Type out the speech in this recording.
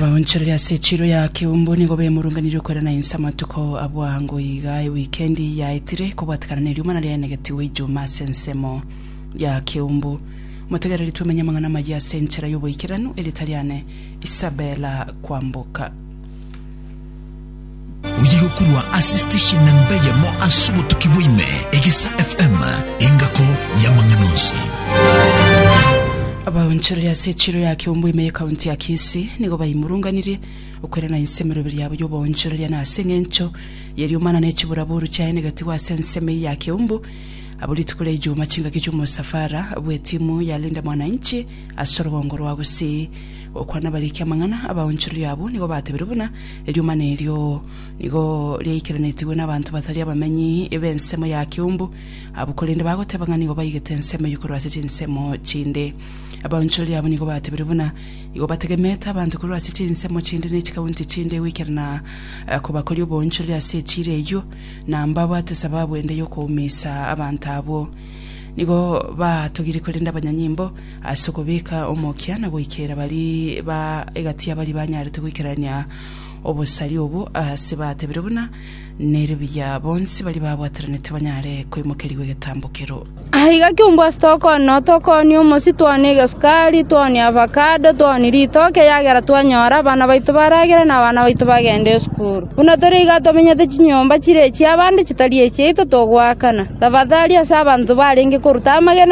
Baonchorere ase echiro ya keumbu nigo bemurunganirie okorera na inse amatuko abwo ango iga ewikendi yaetire kobwatekana na eriomana riaenegetigwe ijuma ase ensemo ya keumbu. Motegereri twemenye amang'ana amayia ase enchera y'oboikeranu eritari ane Isabella kwamboka. Oye gokurwa ase station embe yemo ase obotuki bwaime, Egesa FM, engako y'amang'ana onsi. Abaonchoreria ase echiro ya Kiombo ime ye county ya Kisii nigo baimurunganirie okwerana ense emeroberi yabo y'oboonchoreria na ase eng'encho y'eriomana ne chiburaboru chiaenegetigwe ase ensemo eye ya Kiombo abo rituko ria Ijumaa chingaki chi'omosafara bw'etimu ya Linda Mwananchi ase orogongo rwa Gusii Okwana nabariki amang'ana, abaonchoreria abwo nigo batebirie buna eriomana erio nigo riaikeranetigwe nabanto batari abamenyi b'ensemo ya Kiumbu abwo korende bagoteba ng'a nigo baigete ensemo eyio korwa ase chinsemo chinde. Abaonchoreria abwo nigo batebirie buna nigo bategemete abanto korwa ase chinsemo chinde ne chikaunti chinde goikerana kobakoria oboonchoreria ase echiira eyio na mbabwate sababu ende y'okoumiisa abanto abwo. Nigo baatogirie korende abanyanyimbo Ase okobeka omokia na goikera bari ba egati ya bari banyarete goikerania obosari obo ase batebire buna nere buya bonsi bari babwataranete banyare koimokerigwa egetambo kero. Aiga kiungo ase tokoonwa, tokoonwa omosi, toonwa egesukari, toonwa avakado, toonwa ritoke, ekiagera twanyora abana baito baragere na abana baito bagende esukuru. Buna tore iga tomenyete chinyomba chire echi'abande chitari echiaito togoakana. Tafadhali ase abanto barenge koruta amagena.